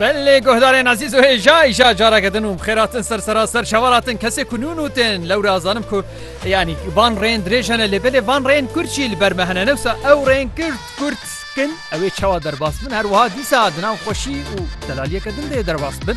Belê guhdarên Azîz û hêja îja careke din û xêratin ser seraser şevaratin kesê ku nûn û tên lewra azanim ku yanî van rên dirêjene lê belê van rên kurçî li ber me hene newsa ew rên kurt kurt kin ew ê çawa derbas bin her wiha dîsa di nav xweşî û delaliyeke din dê derbas bin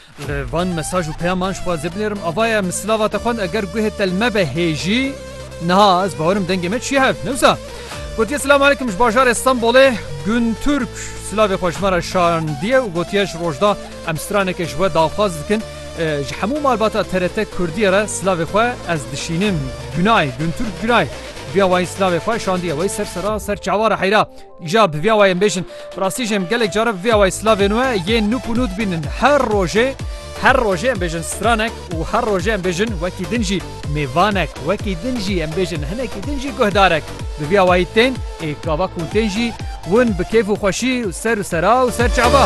Li van mesaj û peyaman ji xwe ez ê binêrim ava ye, Min silava te xwend eger guhê te li me be hêjî niha ez bawer im dengê me çiye hev ne wisa. Gotiye Silam Aleykum ji bajarê Stenbolê Gun Turk silavê xwe ji me re şandiye û gotiye ji rojda em straneke ji we daxwaz dikin ji hemû malbata TRT Kurdiyê re silavê xwe ez dişînim. Gunay Gun Turk gunay. Duya wayî silavê xwe şandiye wayî ser sera ser çawa re heyra. Îja bi vî awayê em bêjin bi rastî jî em gelek caran bi vî awayê silavên we yên nûk û nû dibînin. Her rojê her rojê em bêjin stranek û her rojê em bêjin wekî din jî mêvanek, wekî din jî em bêjin hinekî din jî guhdarek. Bi vî awayî tên ê gava ku tên jî win bi kêf û xweşî û ser û sera û ser çava.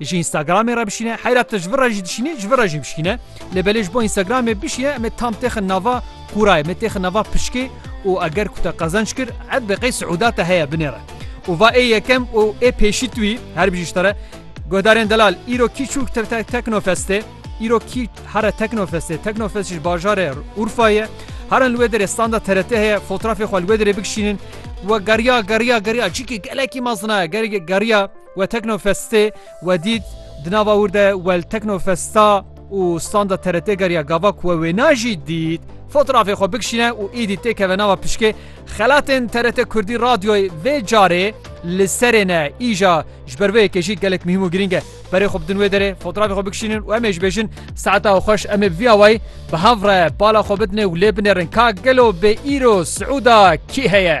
Ji Instagramê re bişîne heyra tu ji vir re jî dişînî ji vir re jî bişîne lê belê ji bo Instagramê bişîye em ê tam têxin nava qûrayê me têxin nava pişkê û eger ku te qezenç kir ev bi qey siûda te heye binê re û va ê yekem û ê pêşî tu wî her bijî ji te re Guhdarên Delal îro kî çûk teknofestê îro kî here teknofestê teknofest ji bajarê Urfayê herin li wê derê standa TRT heye fotrafê xwe li wê derê bikişînin we geriya geriya geriya çîkî gelekî mezin e geriya We Teknofestê we dît, di nava wir de we li Teknofesta û standa TRT geriya gava ku we wê na jî dît, fotrafê xwe bikişîne û êdî têkeve nava pişkê xelatên TRT Kurdî Radyoyê vê carê li serê ne îja ji ber vê yekê jî gelek mihîm û girîng e. Berê xwe bidin wê derê, fotrafê xwe bikişînin û em ê ji bêjin Saeta xweş em ê bi vî awayî bi hev re bala xwe bidinê û lê binêrin ka gelo bê îro Siûda kî heye?